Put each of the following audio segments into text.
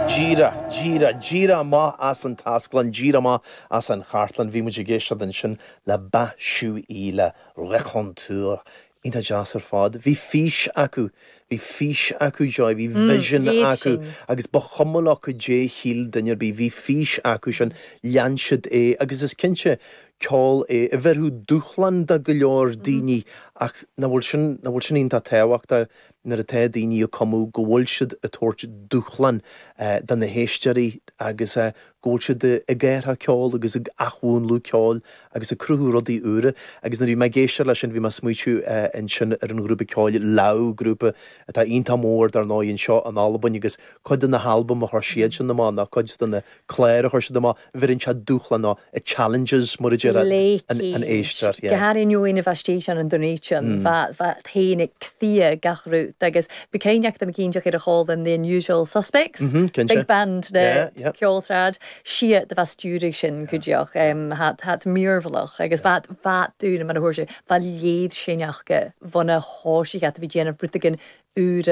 Díreach, díreach, díreach amach as an taisclann, díreach amach as an chartlann. Bhí muid ag éisteacht ansin le Bachué le Raconteur. Iontach deas ar fad. Bhí fís acu. Bhí fís acu, Joy. Bhí vision acu. Agus ba chuma leo goidé shíl duine ar bith. Bhí fís acu sin. Lean siad é. Agus is cinnte, ceol é a bhéarfadh dúshlán do go leor daoine. Ach nach bhfuil sin, nach bhfuil sin iontach tábhachtach? nuair atá daoine ag cumadh, go bhfuil siad ag tabhairt dúshlán do na héisteoirí agus go bhfuil siad ag athrú ceoil agus ag athmhúnlú ceoil agus ag cruthú rudaí úra agus nuair a bhí mé ag éisteacht le sin bhí mé ag smaoitiú ansin ar an ghrúpa ceoil Lau, grúpa atá iontach mór dar ndóigh anseo in Albain agus cuid de na halbam a chuir siadsan amach ná cuid de na clár a chuir siad amach, bheireann siad dúshláin nó challenges mar a deir an éisteoir. Go háirithe you in a bheith state an an donation bheith bheith féin ag Cthia gach rud agus bhí cinn acu am cinn deacair ar a chúl an The unusual suspects big band le ceol trad siad de bheith stiúraigh sin go deoch em hat hat míorbhlach agus bheith bheith dún mar a thuair sé bheith léad sin ach go bhana háisigh at a bhí déanamh rud éigin úr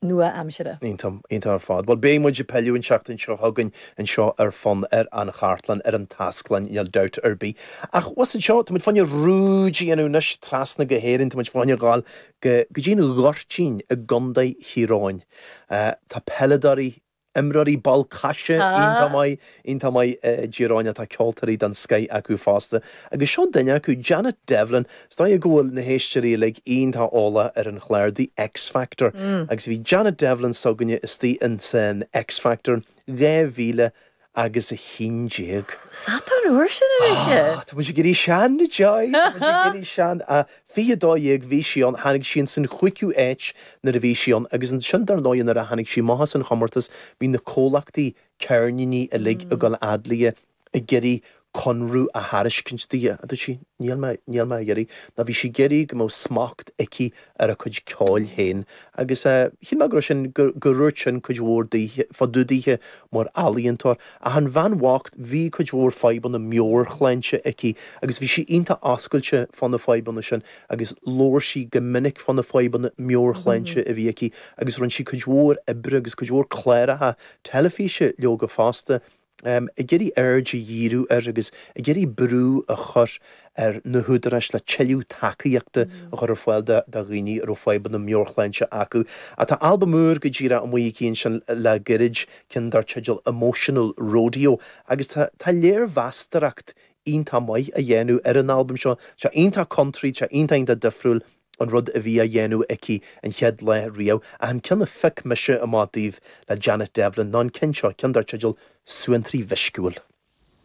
nua-aimsire. Aontaím. Aontaím ar fad. Bhuel, beidh muid ag pilleadh an tseachtain seo chugainn anseo ar Fonn ar an Chartlann, ar an taisclann, níl dabht ar bith. Ach abhus anseo, tá muid fá choinne ruaig a dhéanamh anois, trasna go hÉirinn, tá muid fá choinne a ghabháil go dtí an Goirtín i gContae Thír Eoghain. Tá peileadóirí imreoirí ball coise iontach maith, iontach maith i dTír Eoghain ach tá ceoltóirí den scoith acu fosta agus seo duine acu, Janet Devlin. Is dóigh go bhfuil na héisteoirí uilig iontach eolach ar an chlár The X Factor agus bhí Janet Devlin s'againne istigh in san X Factor 2000 agus a haon déag. Ó, is fhada ón uair sin anois é! Tá muid ag éirí sean, a Joy, tá muid ag éirí sean. Fiche dó dhéag bhí sí ann, tháinig sí ins an chúigiú áit nuair a bhí sí ann agus ansin dar ndóigh nuair a tháinig sí amach as an chomórtas bhí na comhlachtaí ceirníní uilig ag dul fhad léi ag iarraidh conradh a thairiscint di ach dúirt sí. Níl mé, níl mé ag iarraidh. Ná bhí sí ag iarraidh go mbeadh smacht aici ar a cuid ceoil féin agus shíl mé go raibh sin, go ndúirt sin cuid mhór daoithe, fá dtaobh daoithe mar ealaíontóir. Ach an bhean bhocht, bhí cuid mhór fadhbanna meabhairshláinte aici agus bhí sí iontach oscailte fá na fadhbanna sin agus labhair sí go minic fá na fadhbanna meabhairshláinte a bhí aici agus rinne sí cuid mhór oibre agus cuid mhór cláracha teilifíse leoga fosta. ag iarraidh aird a dhíriú ar agus ag iarraidh brú a chur ar na húdaráis le tuilleadh tacaíochta a chur ar fáil do dhaoine a raibh fadhbanna meabhairshláinte acu. Tá albam úr go díreach amuigh aici ansin le gairid, ceann dar teideal Emotional Rodeo, agus tá léirmheastaireacht iontach maith á dhéanamh ar an albam seo. Tá sé iontach country, tá sé iontach, iontach difriúil. an rud a bhí á dhéanamh aici an chéad lá riamh, ach an ceann a phioc mise amach daoibh le Janet Devlin ná an ceann seo, ceann dar teideal 'Suantraí Meisciúil'.